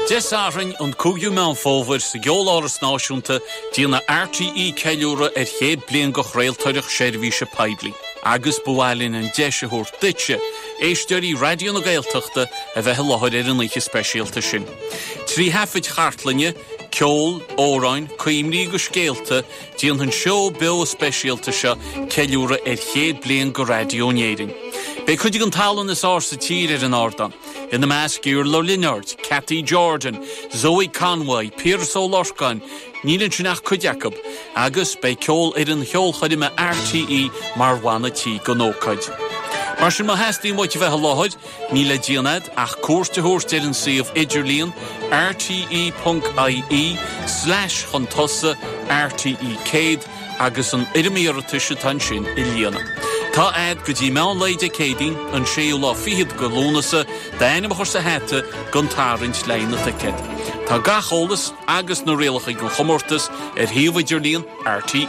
Dé Sathairn, an 5ú Meán Fómhair, sa gCeoláras Náisiúnta, déanfaidh RTÉ ceiliúradh ar chéad bliain de chraoltóireacht seirbhíse poiblí agus ba mhaith linn an deis a thabhairt duitse, éisteoirí Raidió na Gaeltachta, a bheith i láthair ar an oíche speisialta sin. Trí thaifid chartlainne, ceol, amhráin, cuimhní agus scéalta, déanfaidh an seó beo speisialta seo ceiliúradh ar chéad bliain de raidió in Éirinn. Beidh cuid den tallann is fhearr sa tír ar an ardán. ina measc Iarla Ó Lionáird, Cathy Jordan, Zoë Conway, Piaras Ó Lorcáin, níl ansin ach cuid acu, agus beidh Ceolfhoireann Cheolchoirme RTÉ mar bhanna tí don ócáid. Mar sin, má theastaíonn uait a bheith i láthair, níl le déanamh agat ach cuairt a thabhairt ar an suíomh idirlíon, rte.ie, slash chun tosaigh RTÉ100. agus an fhoirm iarratais atá ansin a líonadh. Tá agat go dtí meán lae Dé Céadaoin, an séú lá fichead de Lúnasa, d'ainm a chur sa hata don tarraingt le haghaidh na dticéad. Tá gach eolas agus na rialacha don chomórtas ar shuíomh idirlíon RTÉ.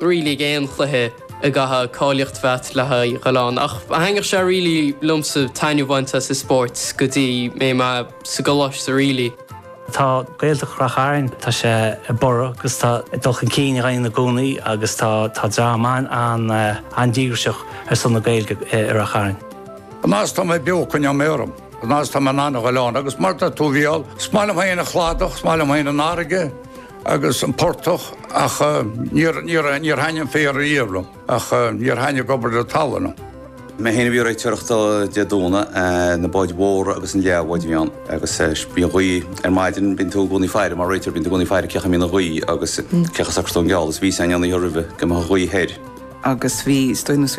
really ag aon chluiche a gcaithfidh cáilíocht a bheith agat le haghaidh a ghoil ann ach thaitneodh sé really liomsa taitneamh a bhaint as an spórt go dtí go mbeidh mé sa gcoláiste really. Tá Gaeltacht Ráth Chairn, tá sé ag borradh agus tá dul chun cinn á dhéanamh ann i gcónaí agus tá tá dream an-díograiseach ar son na Gaeilge i Ráth Chairn. An fhad is atá mé beo coinneoidh mé orm, an fhad is atá mé in ann a ghoil ann agus mar tá tú bhuel, is maith liom féin an chladach, is maith liom féin an fharraige, agus an portach ach níor thaitnigh an féar riamh liom ach níor thaitnigh obair na talún liom. Mé féin a bhí ag réiteoireacht Dé Domhnaigh, na báid mhóra agus na leathbháid a bhí ann agus bhí an ghaoth ar maidin, bíonn tú i gcónaí ag faire mar réiteoir, bíonn tú i gcónaí ag faire cá mbeidh an ghaoth agus cén chaoi a socróidh tú an geall agus bhí sé i gcónaí roimhe go mbeadh an ghaoth thoir. agus bhí, is dóigh,